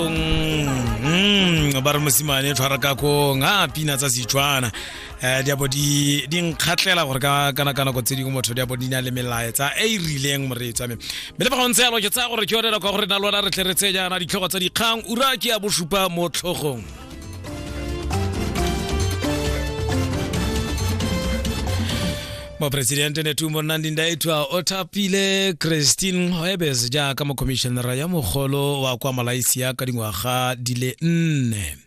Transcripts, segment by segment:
mm, ba re mosimane tshwara ka kong a pina tsa setswana um diabo di nkgatlhela gore ka naka nako tse dingwe motho diabo di na le melaetsa e e rileng moreetsa me mme le fa go ntse yalo ke tsaya gore ke yone nako ya gore na lona re tle re tse jaana ditlhogo tsa dikgang ura ke ya bosupa mo tlhogong moporesidente netumbo nnandi ndaitwa o thapile christine hoebes jaaka mokhomišenara ya mogolo wa kwa malaysia ka dingwaga di le nne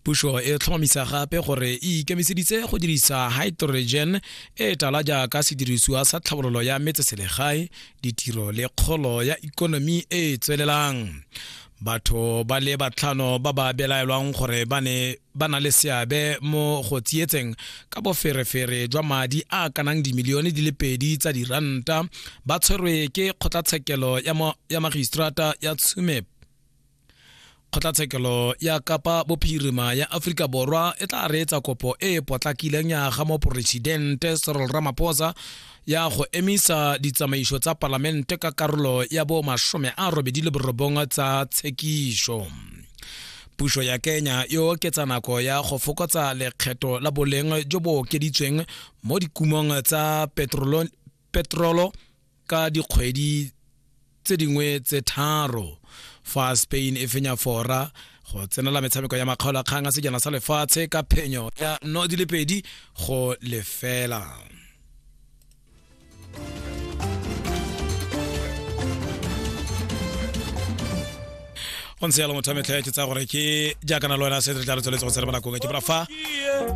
puso e tlhomamisa gape gore e ikemiseditse go dirisa hydrogen e tala jaaka sedirisiwa sa tlhabololo ya metseselegae ditiro le kgolo ya ikonomi e e tswelelang batho ba le batlhano ba ba belaelwang gore ba ne ba na le seabe mo go tsietseng ka boferefere jwa madi a kanang dimilione di le pedi tsa diranta ba tshwerwe ke kgotlatshekelo ya magistrata ya tshumep kgotlatshekelo ya kapa bophirima ya aforika borwa e tla reetsa kopo e e potlakileng ya ga moporesidente serol ramaphosa ya go emisa ditsamaiso tsa palamente ka karolo ya bo masome a robedi le borobong tsa tshekiso puso ya kenya e oketsa nako ya go fokotsa lekgetho la boleng jo bo okeditsweng mo dikumong tsa petrolo ka dikgwedi tse dingwe tse tharo fa spain e fenya fora go tsenela metshameko ya makgaolo a kgang a sejana sa lefatshe ka phenyo ya no di le pedi go lefela go ntse yalo motho wa metlha ke tsaya gore ke jaaka na le wena se re tla re tsweletse go tsere mo nakong ke bora fa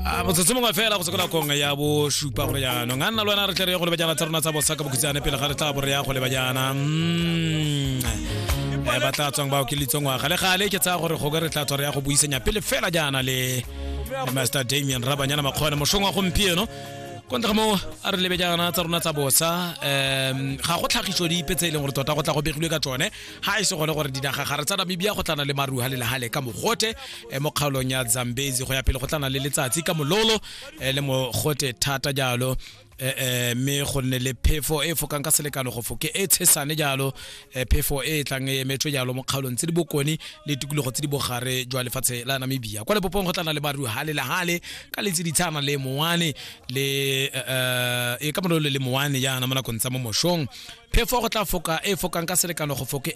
a motsotso mongwe fela go se ko nakong ya bosupa gore jaanong a nna le wena re tle re ye go lebajana tsa rona tsa bosa ka bokhutshane pele ga re tla bo re ya go lebajana Eh, ba tla tswang ba okelitse ngwaga le gale ke tsaya gore goke re tla tswa re ya go buisanya pele fela jaana le le master damian rabanyana makgone mošong wa gompieno ko ntle ga moo a re lebe jaana tsa rona tsa bosa um ga go tlhagiso dipe tse e leng gore tota go tla go begilwe ka tsone ga e se gone gore dinaga gare tsa namibia go tlana le maruha le lehale ka mogote eh, mo kgaolong ya zambezi go ya pele go tlana le letsatsi ka mololo eh, le mogote thata jalo eh, eh, mme go nne le phefo e fokang ka selekano go foke e tshesane jalo eh, phefo e e tlang e emetswe jalo mo kgaolong tse di bokone le tikologo tse di bogare jwa lefatshe la namibia kwa lepopong go tlana le maruha le lehale ka letse ditshana le mowane le uh, e ka mololo le moane jaana mo nakong tsa mo mošong phefo go tla foka e fokang ka selekano go foke e